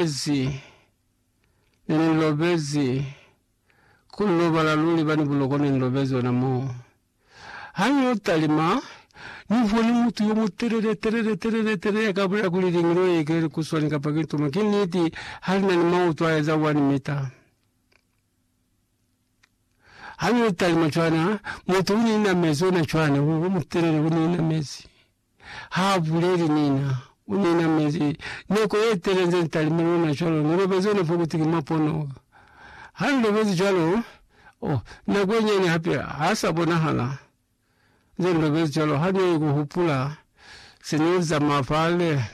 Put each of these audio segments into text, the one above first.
Lezi, Ne ni lobezi, ku ni lobala luli bani buloko ne ni lobezi ona moo. Ha ni yo talima, Ni boni mutu yo mutelele, telele, telele, telele ya ka bulela kuli, Liñilo ye ke likuswani kapa ki ntumo. Ki niti, ha li na ni mautu a eza one mita. Ha ni yo talima cwana, mutu u ni inamezi ona cwana, u mutelele, u ni inamezi. Ha a buleli nina, u ne na mezi nako ye tele nze ni talime lona cwalo. Ni lobezi ona fo kuti ki mwa pono. Ha ni lobezi cwalo, oh, nako ye nyane hape ha sa bonahala. Nze ni lobezi cwalo, ha ni ku hupula se ne ni zamaya fale,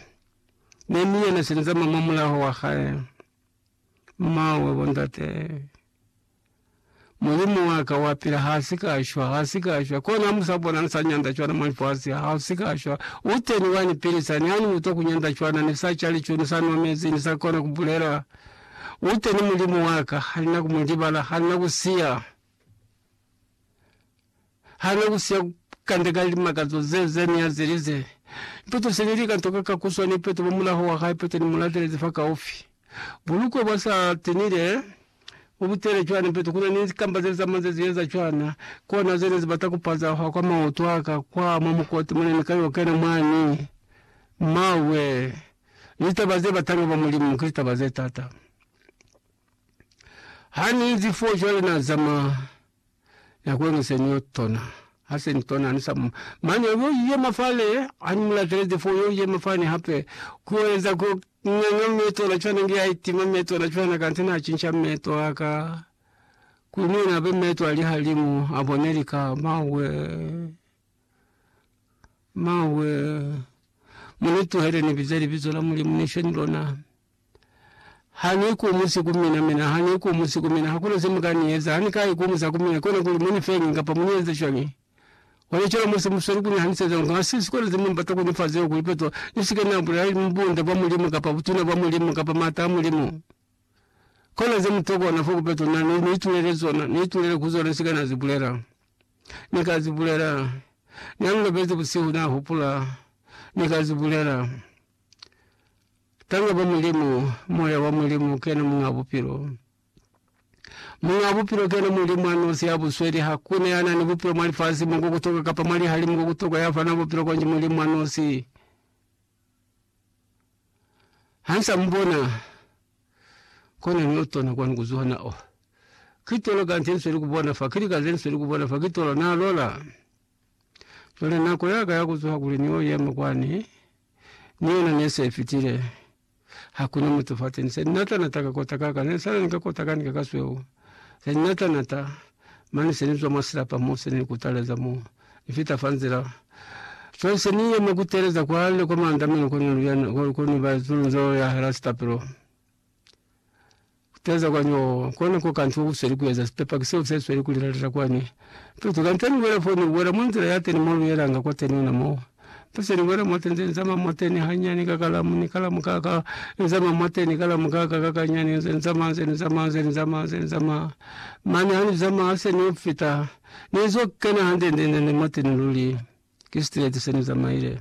ne ni yena se ni zamaya mwa mulaho wa hae. Mawe, bo ndate. Mulimu wa ka wa pila, ha si ka shwa, ha si ka shwa. Kona mu sa bona ni sa nyanda cwana mwa lifasi, ha si ka shwa. U teni wa ni pilisa, ni ha ni utwa ku nyanda cwana, ni sa ca lico, ni sa nwa mezi, ni sa kona ku bulela. U teni Mulimu wa ka, ha ni na ku mu libala, ha ni na ku siya. Ha ne ku siya kanda ka limakazo ze ze ne a zelize, Ipeto se ne li ka ntoka ka ku swa ni Ipeto mwa mulaho wa hae. Ipeto ni mu latelezi fakaufi. Bulukwe bwa sa tinile bu butele cwana. Ipeto ku na ni kamba ze za manze ze eza cwana. Kona ze ne zi bata ku pazahwa kwa maoto a ka kwa mwa mukoti mo ne ni ka yo kena mwani. Mmawe! Litaba ze batanga ba Mulimu ki litaba ze t'ata. Ha ni inzi foo cwale, na zama. Na ku ene se ni yo tona. Ha se ni tona, ni sa mu. Mane u yo yema fale, ha ni mu latelezi foo, u yo yema fani hape. Ku yo eza ku nganga meto ona cwana, nge a itima meto ona cwana, kanti na cinca meto a ka. Kuli ni yena abe meto a lihalimu, a bone lika. Mawee! Mawee! Mu ni tuhele ni bize libizo la Mulimu, ni she ni lona. Ha ni ikumusi ku mina, mina ha ni ikumusi ku mina, hakuna se mu ka ni eza. Ha ni ka ikumusa ku mina, kona kuli mu ni fe eñi kapa mu ni eze cwañi. Ona cwalo mo se mu sweli ku ni haniseza ngo, ha si sikolo ze mu bata ku ni fa zeo ku ipezwa. Ni si ke na bulela bunda bwa Mulimu, kapa butuna bwa Mulimu, kapa maata a Mulimu. Kona ze mu tokwa ona fo ku pezwa. Na ni, ni itulele zona, ni itulele ku zona, ni si ke na zi bulela. Ni ka zi bulela. Na ni lobezi busihu, na hupula. Ni ka zi bulela. Tanga ba Mulimu, Moya wa Mulimu kena Muñ'a Bupilo. Muñ'a Bupilo kena Mulimu a nosi ya busweli. Hakuna ya na ni bupilo mwa lifasi mo ko kutoka kapa mwa lihalimu ko kutoka ya fana bupilo konji Mulimu a nosi. Ha nsa mubona kona ni otona kwani kuzuha na oh kitolo kanti nsweli kubona fa kili kaze nsweli kubona fa kitolo na lola jole nako yaka ya kuzuha kuli ni oyema kwani ni yona ne se fitile. Hakuna mutu fateni se nata nata ka kota kaka ne sala ni ka kota kani ka kasweu se nata nata mane se ni zwa mwa silapa mo se ni kutaleza mo ni fita fa nzila cwale se ni yema kuteleza kwale kwa maandamano ko ni luyana ko ni ba zulu nzo ya hala sitapelo Kuteza kwani oo kona ko kantu ousweli kueza sipepaki seo se sweli kulilalila kwani tutu kanteni wela foni wela mwa nzila ya teni molu yelanga kwa teni ona mo tuseni wela mwa tenze nzama mwa teni hanyani ka kalamu ni kalamu ka ka nzama mwa teni kalamu ka ka kakanyani nze nzama nze nzama nze nzama nze nzama mane ha nzama hase no fita nezo kena hande nde nde nde mwa teni luli ke straight se ne zamaile.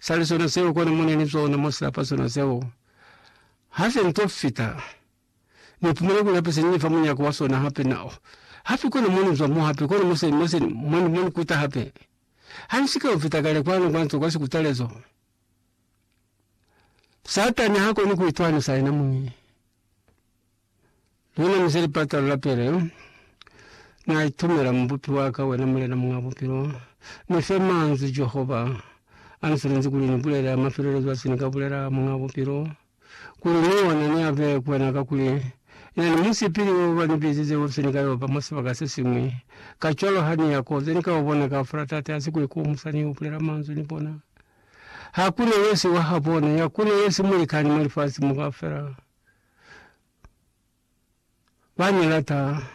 sali sona seo kona mone ni zona mo silapa sona seo hase nto fita ni pumana kuli hape seni fa munyako wa sona hape na hape kona moni zwa mo hape kona mose mose moni moni kuta hape hansi ka fita kale kwano kwanto kwa sikutalezo satani hako ni kuitwani sa ina muni. Luna muze lipata lu lapele, Na itumela Mubupi wa ka, wena Mulena Muñ'a Bupilo. Ni fe manzwi, Jehova, a ni sulenzi kuli ni bulele a mafelelezo a se ni ka bulela, Muñ'a Bupilo, kuli ni yona ni abe ku wena, kakuli na ni musipili wo ba ni bizize wo fise ni ka yo ba mwa sibaka se siñwi. Kacwalo ha ni ya ko ze ni ka o bona kaufela, Tate, hasi ku ikomusa ni yo bulela manzwi ni bona. Ha ku ne ye si wa habona, ya ku ne ye si mulikani mwa lifasi mo kaufela, ba ni lata.